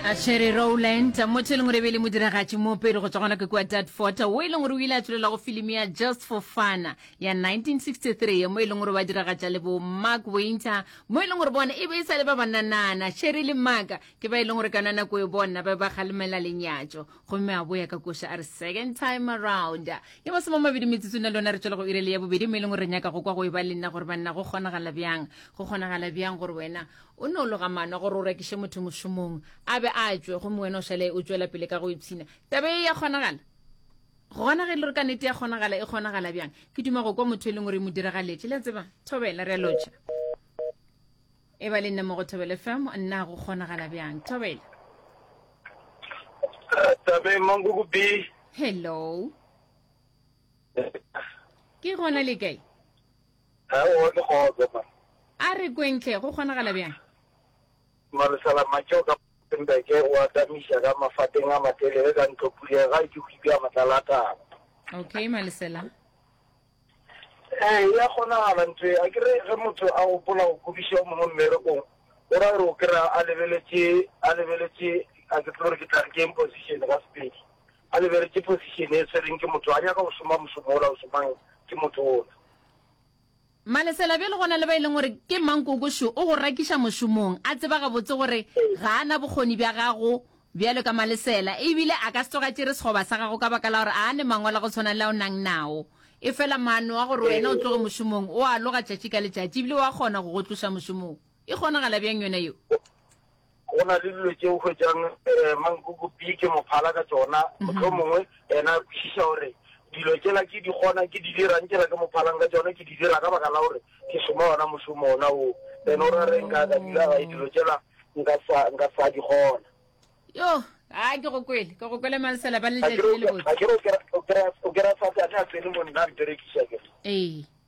a tshwere rowland motho e leng gore e be le modiragatši moopedi go tswa gona ke kua datfort o e leng gore o ile a tswelela go filimi ya just for fana ya 1963 mo e leng gore ba diragatša le bo mark winter mo e leng gore bona e be e sa le ba bananana sherry le maka ke ba e leng gore ka nanako e bona ba ba kgalemela lenyatso gomme a boya ka koša a re second time around ya masoma mabedi metsotso na lona re tswela go irele ya bobedi mo e leng gore re nyaka go kwa go e ba le nna gore banna go kgonagala bjang go kgonagala bjang gore wena O no loga maano a gore o rekiše motho mošomong a be a tšwe gomme wena o šale o tšwela pele ka go ipshina. Taba e ya kgonagala? Gona ge e le gore ka nete ya kgonagala e kgonagala bjang, ke duma go kwa motho e leng gore e mo diragaletše. Le a tseba, thobela, re a lotšha. E ba le nna mo go Thobela FM, nna go kgonagala bjang. Thobela. Tabe Manguku B. Hello. Ke gona le kae? Ga o one kgogo man. A re kweng hle, go kgonagala bjang? Maresalamatšeo ka Rustenburg o atamiša ka mafateng a matelele ka ntlo puleng ga e ke go ibja matlalatala. Ok, Malesela. Ee, e a kgonagala ntho ye. Akere ge motho a gopola go kwebiša o mongwe mmerekong, go ra gore o kry-a a lebeletše, a lebeletše, a ke tsebe gore ke tla re ke eng position ka Sepedi. A lebeletše position e swereng ke motho, a nyaka go šoma mošomo ola o šomang ke motho ola. Malesela, bjale go na le ba e leng gore ke mankoko šo, o go rakiša mošomong, a tseba gabotse gore ga a na bokgoni bja gago bjalo ka Malesela, e bile a ka se tloge a tšere sekgoba sa gago ka baka la gore a a ne mangwalo a go tshwana le a o nang nao. E fela maano a gore wena o tloge mošomong, o a loga tšatši ka letšatši e bile o a kgona go go tloša mošomong. E kgonagala bjang yona yeo? Go na le dilo tše o hwetšang um mankukupii ke mo phala ka tšona, mohlomongwe yena a kwešiša gore dilo tšela ke di kgona ke di dirang tšela ke mo phalang ka tšona ke di dira ka baka la gore ke šoma ona mošomo ona o then o ra re nka ka dula gae dilo tšela nka sa nka sa di kgona yo a ke go kwele ke go kwele malesela ba le letšatši le lebotse o kry-a satane a tsene mo nna a mperekiša ke ee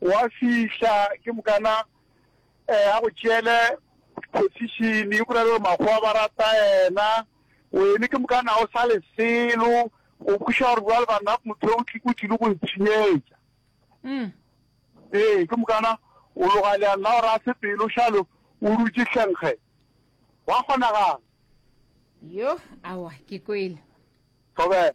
Gwa fihla ke mokana a go tšeele position, o bolele gore makgowa ba rata yena, wene ke mokana ga o sa le selo, o kwešiša gore bjale banna motho o tlile go ntshenyetša. Ee, ke mokana o loga leanna gore a se pelo šalo o dutše hlengge. Gwa kgonagala. Yoh, aowa, ke kwele. Thobela.